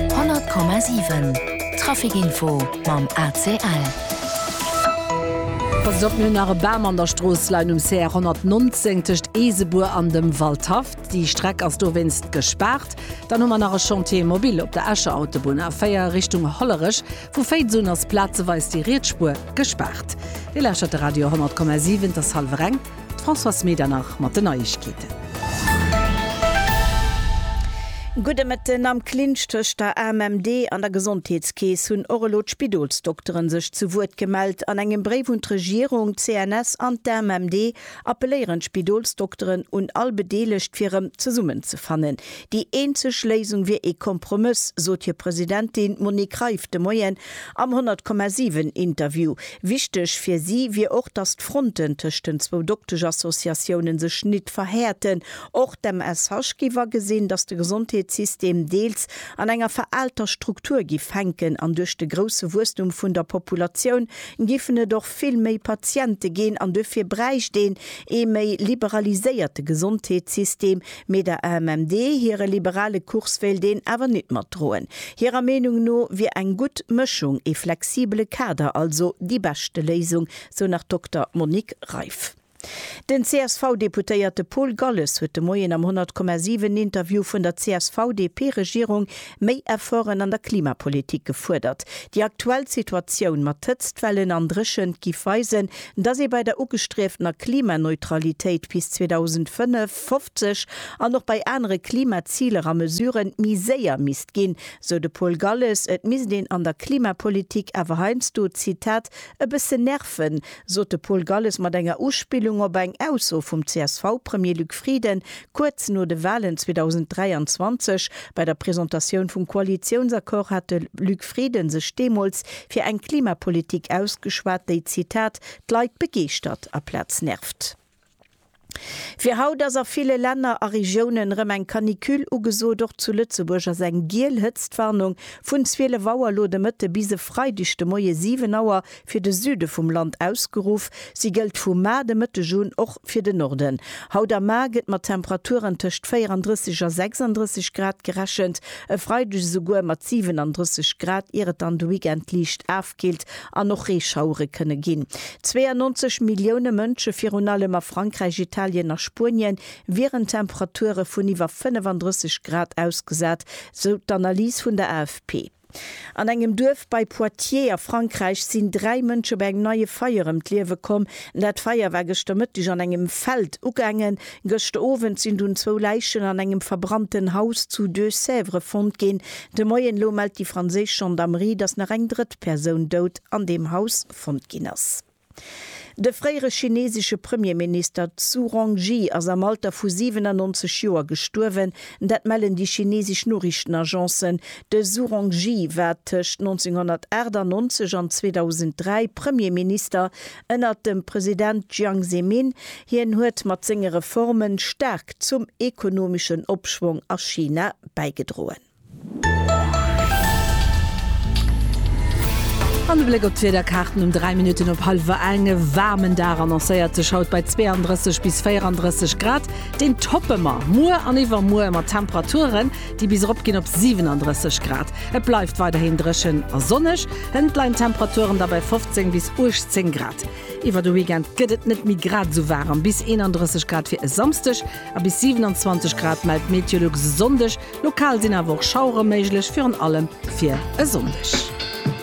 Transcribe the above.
100,7 Trafic info mam ACL. Pass op, mir hunn nach e Bam an der Strooss leien um CR 119 tëscht Eesebuer an dem Waldhaff. Déi Streck ass dowéinst gespaart. Dann hu mer nach e Chantier immobil op der Escher Autobunn, A4 Richtung Hollerech. Vu Féiz un ass plazeweis déi riets Spuer gespaart. Dir lauschtert de Radio 100,7, et ass hallwer eng. D'Françoise Medernach mat den Neiegkeeten. Gudde Mëtten, Am Clinch tëscht der AMMD an der Gesondheetskeess hunn och elo d'Spidolsdokteren sech zu Wuert gemellt. An engem Bréif un d'Regierung, d'CNS an d'AMMD appelléieren d'Spidolsdokteren un all Bedeelegt fir erëm zesummenzefannen. Déi eenzeg Léisung wier ee Kompromëss, sot hir Presidentin Monique Reiff de Moien Am 100,7 Interview. Wichteg fir si wier och, datt d'Fronten tëscht den zwou Doktesch-Associatiounen sech nit verhäerten. Och d'MSH géif agesinn, datt de Gesondheetssystem deels an enger veraalter Struktur giff hänken an duerch de grousse Wuesstum vun der Populatioun giffen et och vill méi Patiente ginn an duerfir bräicht een ee méi liberaliséierte Gesondheetssystem, Mee der AMMD hire liberale Kurs wéilt een awer nit matdroen. Hirer Meenung no wier eng gutt Mëschung, ee flexibele Kader also déi beschte Léisung, sou nach d'Dokter Monique Reiff. Den CSV-Deputéierte Paul Galles huet de Moien am 100,7 Interview vun der CSV-DP-Regierung méi Efforten an der Klimapolitik gefuerdert. Déi aktuell Situatioun mat Hëtztwellen an Dréchent giff weisen, datt ee bei der ugestrieftener Klimaneutralitéit bis 2005, 2050 an och bei anere Klimaziler a Mesuren méi séier misst ginn, sou de Paul Galles. Et misst een an der Klimapolitik awer heiansdo, Zitat, e bësse nerven, sot de Paul Galles mat enger Uspillung op eng Ausso vum CSV-Premier Luc Frieden kuerz no de Walen 2023. Bei der Presentatioun vum Koalitiounsaccord hat de Luc Frieden sech deemools fir eng Klimapolitik ausgeschwat, déi, Zitat, d'Leit begeeschtert aplaz nervt. Fir haut ass a ville Länner a Regiounen rëm eng Canicule ugesot. Och zu Lëtzebuerg ass eng giel Hëtztwarnung vun 12 Auer elo de Mëtte bis e Freideg de Moie 7 Auer fir de Süde vum Land ausgeruff. Si gëllt vu mar de Mëtteg un och fir de Norden. Haut a mar gëtt mat Temperaturen tëscht 34 a 36 Grad gerechent, e Freideg esouguer mat 37 Grad, ier et dann de Weekend liicht aaf D'Keelt an och Reeschauere kënne ginn. 92 Millioune Mënsche, virun allem a Frankräich, Italien a Spuenien, wieren Temperature vun iwwer 35 Grad ausgesat, sou d'Analys vun der AFP. An engem Duerf bei Poitiers a Frankräich sinn dräi Mënsche bei engem neie Feier ëm d'Liewe komm. Dat Feier war gëschter Mëtteg an engem Feld ugaangen. Gëschter Owend sinn dunn zwou Läichen an engem verbrannten Haus zu Deux-Sèvres fonnt ginn. De Moien elo mellt déi franséisch Gendarmerie, datt nach eng drëtt Persoun dout an deem Haus fonnt ginn ass. De fréiere chinesesche Premierminister Zhu Rongji ass am Alter vu 97 Joer gestuerwen. Dat mellen déi chinesesch Noriichtenagencen. De Zhu Rongji war tëscht 1998 an 2003 Premierminister Ënnert dem President Jiang Zemin, hien huet mat senge Reforme staark zum ekonomeschen Opschwong a China bäigedroen. An de Bléck op d'Wiederkaarten um 3 Minutten op hallwer eng, E waarmen Dag annoncéiert sech haut bei 32 bis 34 Grad. Deen toppe mer muer an iwwermuer mat Temperaturen, déi bis erop ginn op 37 Grad. Et bleift weiderhin dréchen a sonneg, hënt leien d'Temperaturen da bei 15 bis 18 Grad. Iwwer de Weekend gëtt et net méi grad esou waarem, bis 31 Grad fir e Samsdeg a bis 27 Grad mellt Meteolux e Sonndeg. Lokal sinn awer och Schauere méiglech, virun allem fir e Sonndeg.